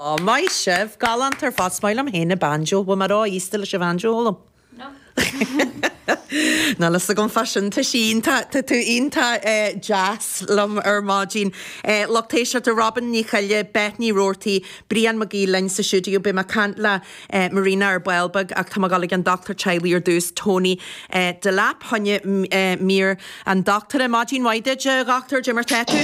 Ó, maith sibh! Galánta ar fad. Is maith liom féin an banjo. Bhuel, má rá aosta leis an bhanjo, ól liom? Níl a fhios agam fá sin. Tá sí iontach, tá tú iontach deas liom ar maidin. A lucht éisteachta, Robin Ní Choille, Beth Ní Roarty, Brian Mac Aoidh linn sa stiúideo. Beidh mé ag caint le Marina ar ball beag ach tá mé ag dul ag an dochtúir teaghlaigh ar dtús, Tony Delap. fá choinne mír an dochtúra. Maidin mhaith duit, a Dhochtúir, goidé mar tá tú?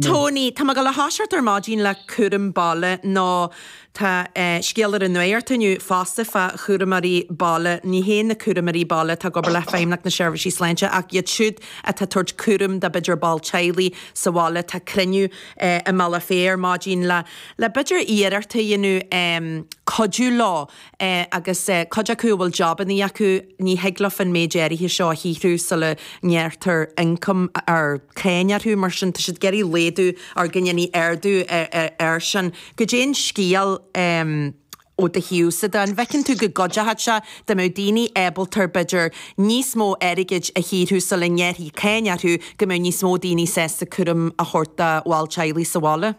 Tony, Tá mé ag gabháil a thoiseacht ar maidin le cúram baile nó tá scéal ar an nuacht inniu fosta fá chúramóirí baile. Ní hé amháin na cúramóirí baile atá ag obair le feidhmeannacht na seirbhísí sláinte ach iad siúd atá tabhairt cúraim dá b'fhéidir ball teaghlaigh sa bhaile. Tá cruinniú i mBealach Féich ar maidin le b'fhéidir iarracht a dhéanamh cuidiú leo agus cuid acu a bhfuil jabannaí acu, ní thig leo an méid áirithe seo a shaothrú sula ngearrtar ioncam ar cháin orthu. Mar sin, tá siad ag iarraidh laghdú go ndéanfaí ardú air sin. Goidé an scéal ó do thaobhsa de? An bhfeiceann tú go gcuideochadh sé dá mbeadh daoine ábalta, b'fhéidir, níos mó airgid a shaothrú sula ngearrfaí cáin orthu, go mbeadh níos mó daoine sásta cúram a thabhairt do bhall teaghlaigh sa bhaile?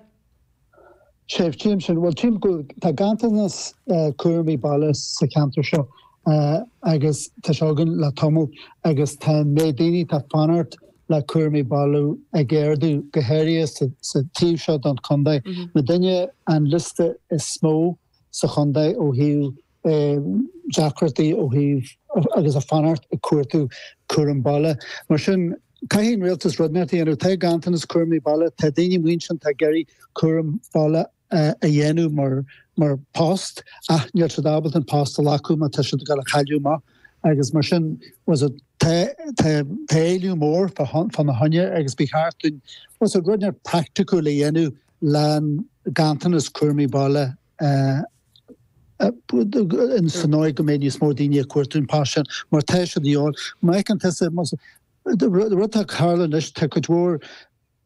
Sea, tchím sin, Bhuel, tchím go bhfuil, tá ganntanas cúramaí baile sa cheantar seo agus tá sé againn le tamall agus tá an méid daoine atá ag fanacht le cúramaí baile ag ardú go háirithe sa taobh seo den chontae. Muidinne, an liosta is mó sa chontae ó thaobh deacrachtaí ó thaobh agus ag fanacht ag cuartú cúram baile. Mar sin, caithfidh an rialtas rud inteacht a dhéanamh. Tá ganntanas cúraimí baile, tá daoine amuigh ansin atá ag iarraidh cúram baile a dhéanamh mar post ach níl siad ábalta an post a ghlacadh má tá siad ag dul a chailleadh amach agus mar sin tá's agat tá tá tá éileamh mór fá fána choinne agus ba cheart dúinn tá's agat rud inteacht praiticiúil a dhéanamh leis an ganntanas cúraimí baile ins an dóigh go mbeidh níos mó daoine ag cuartú an post sin mar tá siad a dhíobháil. Má fheiceann tusa an rud atá ag tarlú anois, tá cuid mhór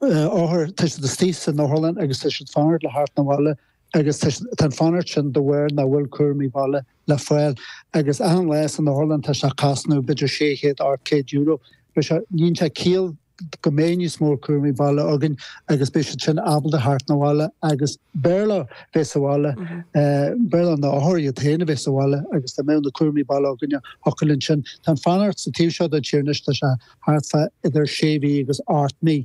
othar, tá siad istigh san otharlann agus tá siad ag fanacht le theacht 'na bhaile agus tá siad, tá an fanacht sin de bharr nach bhfuil cúraimí baile le fáil agus achan lá san otharlann tá sé ag cosnú b'fhéidir €600, €700. Beidh sé, níonn sé ciall. go mbeidh níos mó cúramaí baile againn agus beidh siad sin ábalta a theacht 'na bhaile agus b'fhearr leo bheith sa bhaile, b'fhearr le na hothair iad féin a bheith sa bhaile agus dá mbeadh na cúramaí baile againn thiocfadh linn sin. Tá an fanacht sa taobh seo den tír anois, tá sé thart fá idir sé mhí agus ocht mí.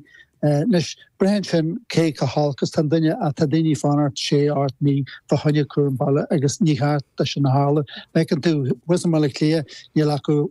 Anois, braitheann sin cé chomh holc is tá an duine ach tá daoine ag fanacht sé, ocht mí fá choinne cúram baile agus níor cheart dó sin a tharlú. Feiceann tú, thuas i mBaile Átha Cliath, níl acu